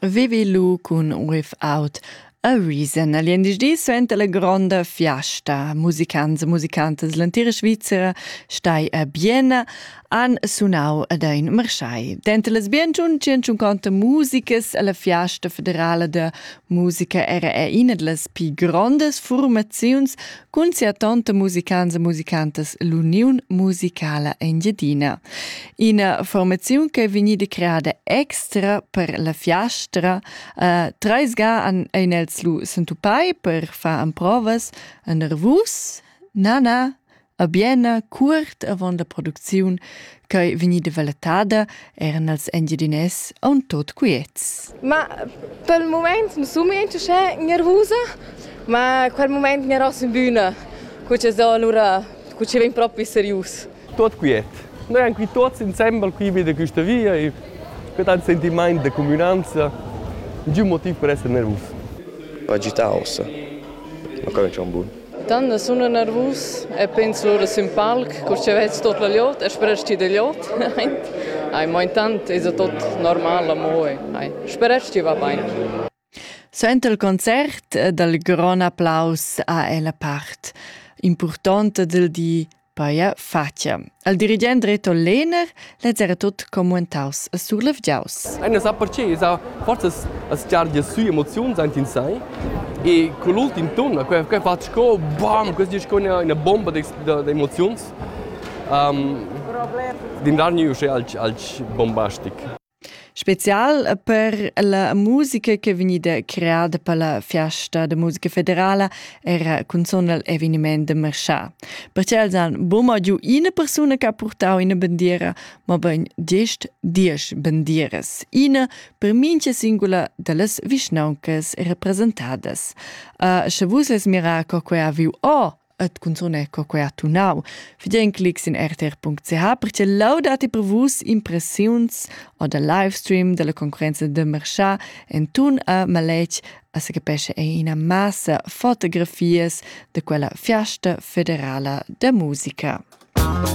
Vivi lu cun Riff Out a Reason. Gliendisdi suenter la gronda fiasta. Musicants e musicantas l'entira Svizzera stai a Bienna han sunau ad ein marschai. Denter las bien 150 musicas alla fiasta federala da musica era er ina dallas pi grondas formaziuns Cun sia tanta musicans e musicantas l'Uniun musicala Engiadina. Ina formaziun che è vegnida creada extra per la fiastra. Uh, treis ga an ein els lu sentupai per far emprovas a nervus. Nana, a Biena, curt avon la producziun ch'ei vegnida valetada eran els engiadinès aunc tot quiets. Ma pel mument mi sun ment uschè gnervusa, ma quel mument gnerò sun büna, cu che so alura, cu che vegn propi serius. Tot quiet. Noi han qui tuots insembel qui vi da quista via e que han sentimaint da cumünanza, niun motiv per esser nervus. Agitaus. Ma quello è un buon. Tanna sun eu nervus e pens lura sün palc, cur cha vez tot la gliot e speresti da gliot. Ai, mo intant esa tot normal amo e ai, sperest chi va bain. Suenter il concert dal grond applaus ha ella part impurtonta del di Paia facia. Al dirigent Reto Lehner lez era tut commuentaus e surlevgiaus. Ein apparceis a forzas a sgargia su emoziuns aint in sai e con l'ultim ton quei quei fa sco bam, questi è sco una, una bomba di emozioni. Um, din dargli uscì al, al bombastic. Spezial per la musica ch'è vegnida creada per la fiasta da musica federala era cunzun igl eveniment da marschar. Pertgei els han buca giu ina persuna che ha purtau ina bandiera, mobein gest diesch bandieras, ina per mintga singula dallas vischnauncas representadas. Sche vus lez mirar co quei ha viu o, et cunzun ecco que ha tunau. Fidien clics in rtr.ch perche laudati per vus impressiuns o del livestream della concorrenza de Merchat en tun a maletg a se capesce è ina massa fotografies de quella fiasta federala de musica. Musik